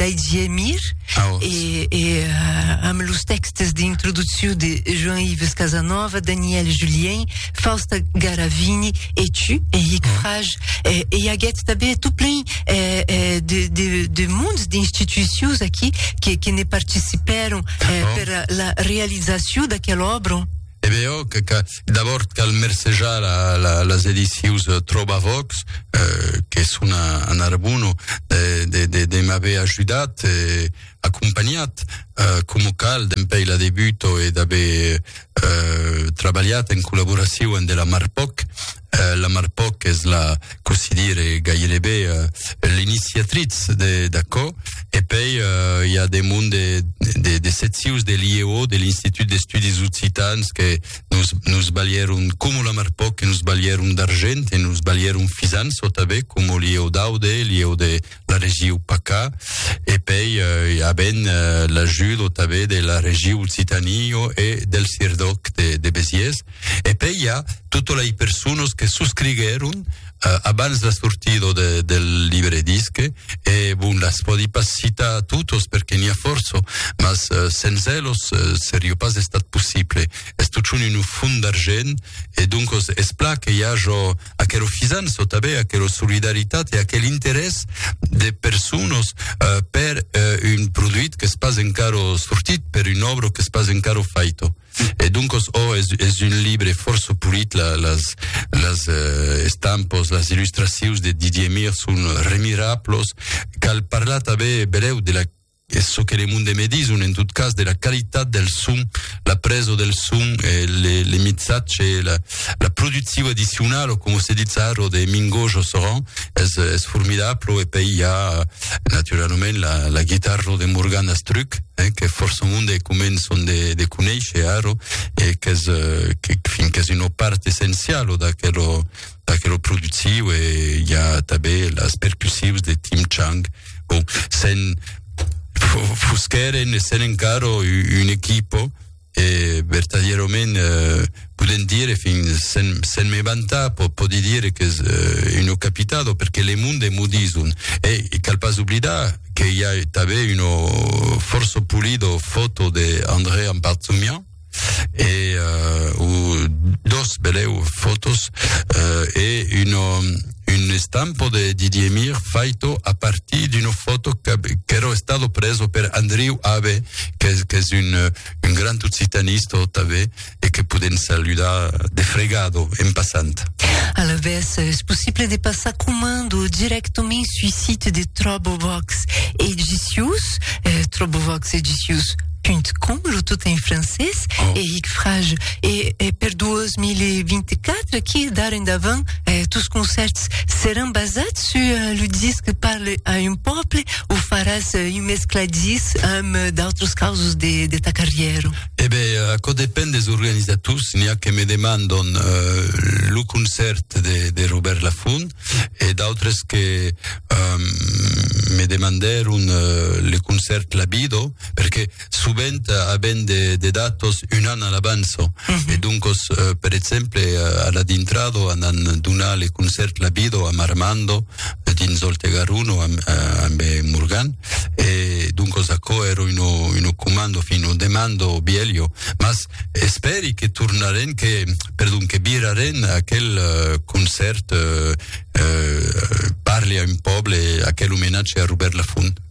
Didier Mir ah, oh. et, et euh, amb los textes d'introduccion de Jean-Yves Casanova, Daniel Julien, Fausta Garavini et tu, Eric ah. Frage. Et, et aguèt tabé tout plein euh, euh, de, de, de mondes d'institutions qui, qui, qui ne participèron euh, ah. per la réalisation d'aquel obra. E be òc, d'abòrd cal mercejar las edicius Trobavox, que son a Narbona, de m'aver ajudat e acompanhat coma cal dempèi la debuta e d'aver trabalhat en collaboracion de la Marpoc. euh, la Marpoc es la, cossí dire, gairebe euh, l'iniciatrice de d'aquò, e pei euh, i a de mond de, de, de setsius de l'IEO, de l'Institut d'Estudis Occitans, que nos, nos balhèron, com la Marpoc, que nos balhèron d'argent, e nos balhèron fisan sota bé, com l'IEO d'Aude, l'IEO de la regiu PACA e pei eh, a ben eh, l'ajudo també de la regiu Occitanio e del Sirdoc de, de Besiers. E pei hi ha totes les persones que subscrigueron eh, abans la sortida de, del llibre disc e bon, les podi pas citar a totes perquè n'hi ha força, mas eh, sense elos eh, seria pas estat possible. És tot un font d'argent e donc es pla que hi ha jo aquelo fisan so tabé aquelo solidaritat e aquel interès de personas eh, per eh, un produit que es pas encaro sortit, per un obro que es pas encaro faito. E donc, oh, es, es un libre força polit, la, las, las eh, estampos, las illustracions de Didier Mir son remirablos, cal parlar tabé beleu de la Es çò que le monde me dison, en tot cas, de la qualitat del son, la preso del son, eh, le, le mixatge, la, la producciu addicional, o com se dit ça, ro de Mingo Josseran, es, es formidable, e pei hi ha, naturalament, la, la guitarra de Morgan Astruc, eh, que força monde començon de, de conèisher, ro, e qu'es, eh, que, fin, qu'es una part essenciala d'aquel, perquè lo productiu e hi ha també las percussius de Tim Chang. Bon, sen fosqueren e sen encara un equipo e vertadierament eh, podem dire fin sen, sen me vantar po, podi dire que és eh, uno capitado perquè le monde m'ho dison e, e cal pas oblidar que hi ha també uno forço pulido foto de André Amparzumian et euh, dos beleu fotos euh, et une une estampo de Didier Mir faito a partir d'une foto qu'ero estado preso per Andriu Abe qu'es qu'es une un grand occitaniste també et que podem saludar de fregado en passant. À la vez, es possible de passar comando directament sur site de Trobovox Edicius, eh, Trobovox Edicius com jo tot en francés oh. e hic frage e, e per 2024 qui d'ara endavant eh, tous concerts seràn basats sur eh, le disc parle a un peuple o faràs eh, un mescladís amb eh, d'autres causes de, de ta carrière Eh bé, eh, aquò depèn des organisators n'hi a que me demandon eh, lo concert de, de Robert Lafont e d'autres que eh, me demandèron eh, le concert Labido perque sovent aven de de datos un an a l'avanço e doncos per exemple a la dintrado an an donat le concèrt la bido amb Armando dins Òlt e Garonne amb ambe Morgan e doncos aquò èra una una comanda enfin una demanda bielho mas espèri que tornarem que perdon que virarem aquel concèrt parli a un pòble aquel omenatge a Robèrt Lafont.